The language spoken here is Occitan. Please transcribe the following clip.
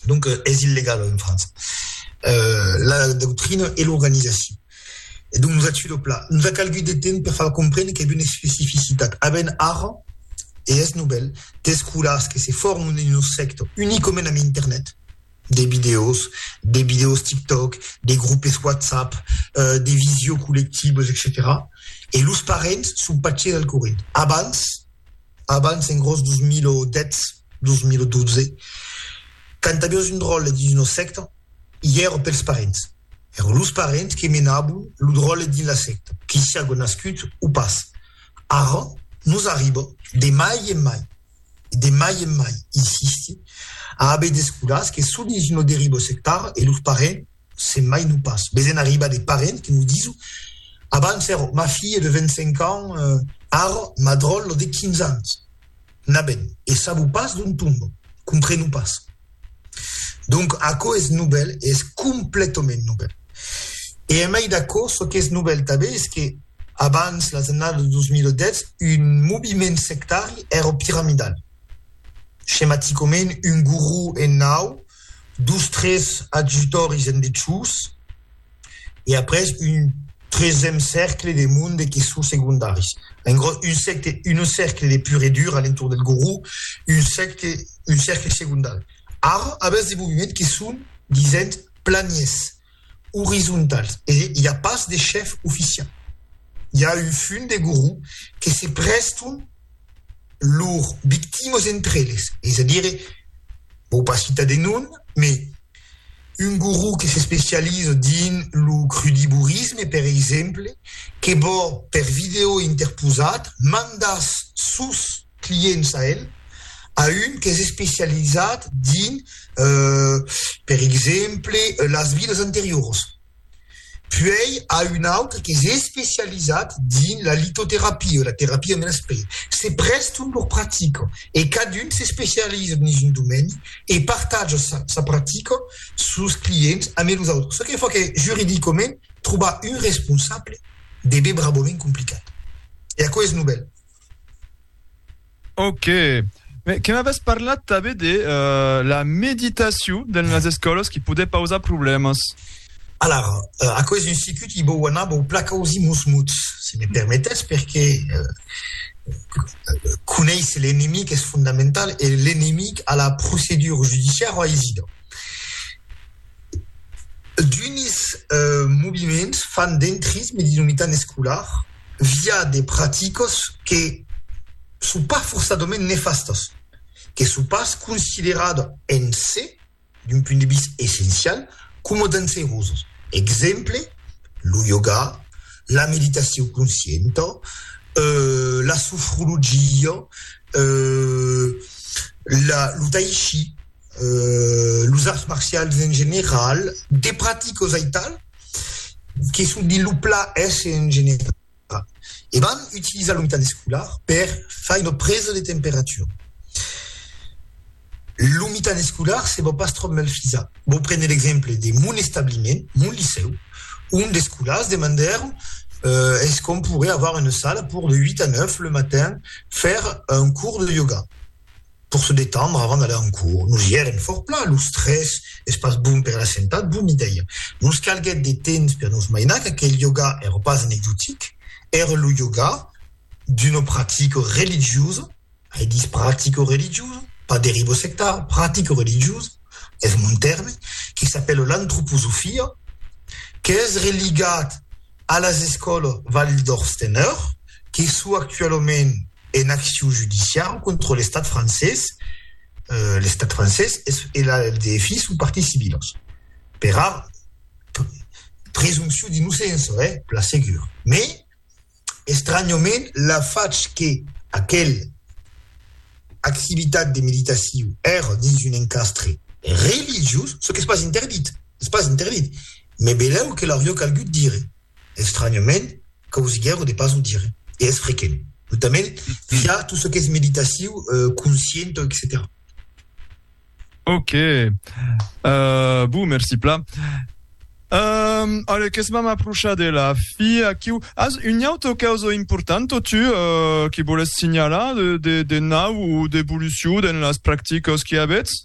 Donc, es illegal en França. La doctrina e l'organizacion. E donc, nos a tuat lo plan. Nos a calgut de temps per far comprendre qu'es una especificitat. A ben ara, e es novèl, d'escolars que se forman dins nos sector unicament amb internet, de vidèos, de vidèos TikTok, de groupes WhatsApp, de visio collectives, etcetèra. E los parents son pas ches al corrent. Abans, Abans, en gròs 2010, 2012, quand aviós un dròlle dins una sècta, i èra pels parents. Èra los parents que menabon lo dròlle dins la sècta, que siágo nascut o pas. Ara, nos arriba, de mai en mai, e de mai en mai, insisti, a aver d'escolars que son dins una deriva sectara e los parents, se mai non pas, ves en arribar de parents que nos diso, abans ero ma filhe de 25 ans, ara ma dròllo de 15 ans. Na ben, e sabo pas d'ont tombo, compreno pas. Donc aquò es novèl e es completament novèl. E en mai d'aquò, çò qu'es novèl tanben es que abans las annadas de 2010, un moviment sectari ero piramidal, schematicament un guru en nau, dos tres adjutòris en dessús e après un tresèm cèrcle de monde que son segondaris. En gros, un secte, un cercle de pur e dur a l'entorn del goró, un secte, un cercle segondari. Ara avètz de moviments que son, disent, planiers. orizontals e i a pas de chef oficial. I a un fum de gorro que se prèston lor victimas entre eles, es a dire, vau pas citar de nom, mai un gorro que s'especializa dins lo crudivorisme, per exemple, que vò per vidèo interposat mandar sus clients a el, a un qu'es especializat dins, per exemple, las vidas anterioras, puèi a un autre qu'es especializat dins la litoterapia, la terapia de l'esperit. Se prèstan lor practica e cadun s'especializa dins un domeni e partatja sa sa practica sus clients ambe los autres, çò que fa que juridicament trobar un responsable deve brabament complicat. E aquò es novèl. Ok. Mais que m'avès parlat també de euh, la meditació dans les escoles qui poder pausar problemes. Alors, euh, aquò és un circuit qui vau anar vau placa aux imusmuts, si me permetès, perque euh, euh conéisser l'enemic es fondamental e l'enemic a la procedura judiciara o a Isidor. D'unis euh moviments fan d'entrisme dins lo mitan escolar, via de praticas que son pas forçadament nefastas, que son pas consideradas en se, d'un punt de vist essencial, coma danserosas. Exemple, lo yoga, la meditacion conscienta, la sofrologia, lo tai chi, los arts marcials en general, de praticas aital, que se dit lo pla es en general e vam utilizar lo mitat escolar per fai una presa de temperatura. Lo mitat escolar se vò pas tròp mal fisa. Vò prene l'exemple de mon establiment, mon licèu, ont d'escolars demandèron eh es qu'on pourrait avoir une sala pour de 8 a 9 le matin faire un cours de yoga. Pour se detendre avant d'aller en cours. Nos i èrem fòrt plan, los tres, es pas bon per a la sentat, bon idèia. Nos calguèt de temps per nos mainar qu'aquel yoga èra pas anecdotic, èra lo yoga d'una practica religiosa, ai dich practica religiosa, pas deriva sectara, practica religiosa, es mon tèrme, que s'apèla l'antroposofia, qu'es religat, A las escòlas Waldorfsteneur, que sou actualament en acciu judiciau contra l'estat francés, l'estat francés e la LDFI son parties civilas, pera presumpcion d'innocença, eh, per la segur. Mès, estranhament, la fach que aquel activitat de meditacion èra dins un encastre religiós, çò qu'es pas interdit, es pas interdit, Me belèu que l'aurió calgut dire. Estranyament, causiguèro de pas o dire. E es frequent, notament via tot çò qu'es meditaciu, conscienta, etcetèra. Ok. Euh, bon, merci plan. Euh, allez, qu'es m'am aprochar de la fi aquiu. As un auto causa importanta, tu, euh, que voles signalar de, de, de nau o d'evoluciu dans las practicas que avètz?